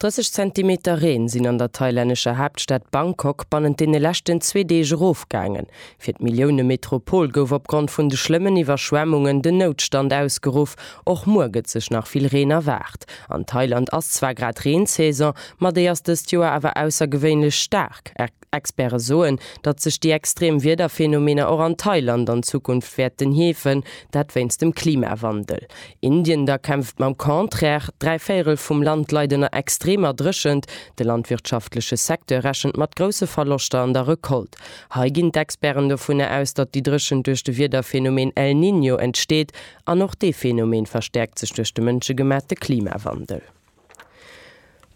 30 Zentimeter Reen sinn an der thailännescher Haaptstad Bangkok bannent deene leschten zwee Deeg erofgaangen. Fir d'Millioune-Metropol gouf opgrond vun de schlëmmen Iwwerschwemmungen den Noutstand ausgeruff. Och muer gëtt sech nach vill Reen erwaart. An Thailand ass zwar grad Reensaison, ma déi ass dëst Joer awer aussergewéinlech staark. Experte soen, datt sech déi extrem Wiederphenomener och an Thailand an Zukunft wäerten heefen, dat wéinst dem Klimawandel. Indien da kämpft mam Contraire, dräi Véirel vum Land leit ënner extremer Dréchent, de landwirtschaftleche Secteur rechent mat grousse Verloschter an der Recolte. Hei ginn d'Experten dovunner aus, datt déi Dréchent duerch de Wiederphenomen El Niño entsteet, an och dee Phenomen verstäerkt sech duerch de mënschegemaachte Klimawandel.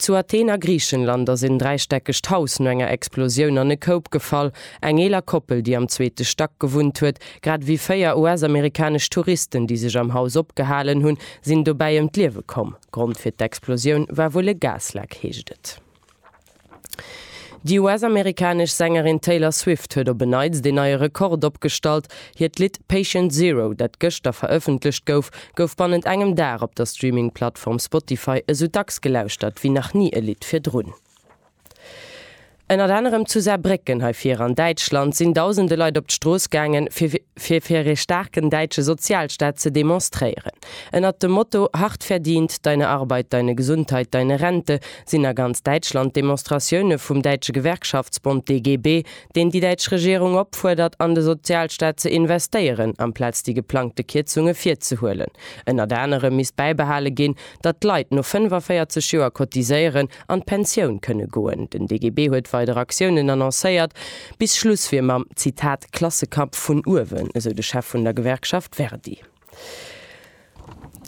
Zu Athen a Griichenland ass en dräistäckegt Haus no enger Explosioun an e Koup gefall. Eng eeler Koppel, déi am zweete Stack gewunnt huet, grad ewéi véier US-amerikanesch Touristen, déi sech am Haus opgehalen hunn, sinn dobäi ëm d'Liewe komm. Grond fir d'Explosioun war wuel e Gasleck, heescht et. Déi US-amerikanesch Sängerin Taylor Swift huet op e Neits deen neie Rekord opgestallt. Hiert Lidd Patient Zero, dat gëschter verëffentlecht gouf, gouf bannent engem Dag op der Streaming-Plattform Spotify esou dacks gelauschtert wéi nach ni e Lidd virdrun. Ënnert anerem zu Saarbrécken, hei vir an Däitschland, sinn dausende Leit op d'Strooss gaangen, fir fir ee staarken däitsche Sozialstaat ze demonstréieren. Ënnert dem Motto Hart verdient, deine Arbeit, deine Gesundheit, deine Rente sinn a ganz Däitschland Demonstratioune vum däitsche Gewerkschaftsbond DGB, deen déi däitsch Regierung opfuerdert, an de Sozialstaat ze investéieren, amplaz déi geplangte Kierzunge virzehuelen. Ënnert anerem misst bäibehale ginn, datt d'Leit no 45 Joer cotiséieren an d'Pensioun kënne goen. Den DGB huet weider Aktiounen annoncéiert. Bis Schluss wier mam, Zitat, Klassekampf vun uewen, esou de Chef vun der Gewerkschaft Verdi.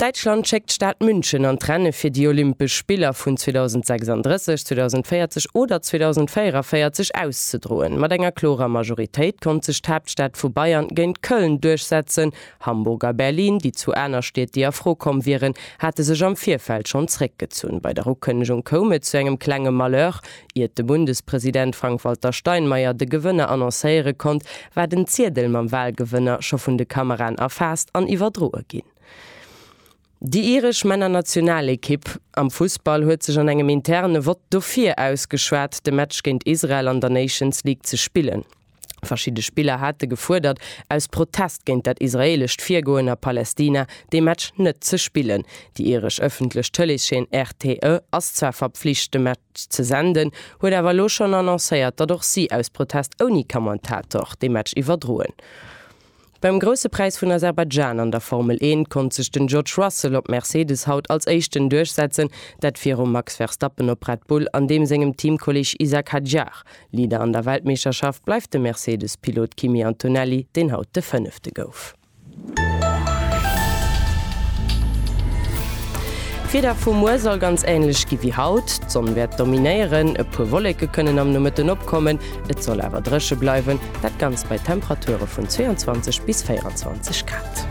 Däitschland schéckt d'Stad München an d'Renne fir déi Olympesch Spiller vun 2036, 2040 oder 2044 auszedroen. Mat enger klorer Majoritéit konnt sech d'Haaptstad vu Bayern géint Köln duerchsetzen. Hamburg a Berlin, déi zwou aner Stied, déi a Fro komm wieren, hate sech am Virfeld schonn zréckgezunn. Bei der Ukënnegung koum et zu engem klenge Malheur. Iert de Bundespresident Frank-Walter Steinmeier de Gewënner annoncéiere konnt, war den Ziedel mam Walgewënner scho vun de Kameraen erfaasst an iwwerdroe ginn. Déi iresch Männernationalekipp am Fussball huet sech an engem interne Vott dofir ausgeschwat, de Match géint Israel an der Nations League ze spillen. Verschidde Spiller hate gefuerdert, aus Protest géint dat israeelescht Virgoen a Palästina, dee Match net ze spillen. Déi iresch ëffentlech Tëleesscheen RTE ass zwar verpflicht, de Match ze senden, huet awer elo schonn annoncéiert, datt och si aus Protest ouni Kommentator dee Match iwwerdroen. Beim Grousse Präis vun Aserbaidschan an der Formel Eent konnt sech den George Russell op Mercedes haut als Éischten duerchsetzen, dat virum Max Verstappen op Red Bull an deem sengem Teamkolleeg Isack Hadjar. Leader an der Weltmeeschterschaft bleift de Mercedes-Pilot Kimi Antonelli, deen haut de Fënnefte gouf. D'Wieder vu muer soll ganz änlech gi wéi haut. D'Sonn wäert dominéieren, e puer Wolleke kënnen am Nomëtten opkommen, Et soll awer dréche bleiwen, dat Ganzt bei Temperature vun 22 bis 24 Grad.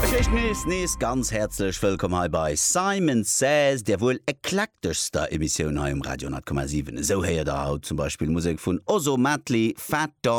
Fir d'éischt nees, nees ganz häerzlech Wëllkomm hei bei Simon Says, der wuel eklekteschster Emissioun hei um Radio 10,7. Esou héiert der haut zum Beispill Musek vun Ozomatli, Fat Dog.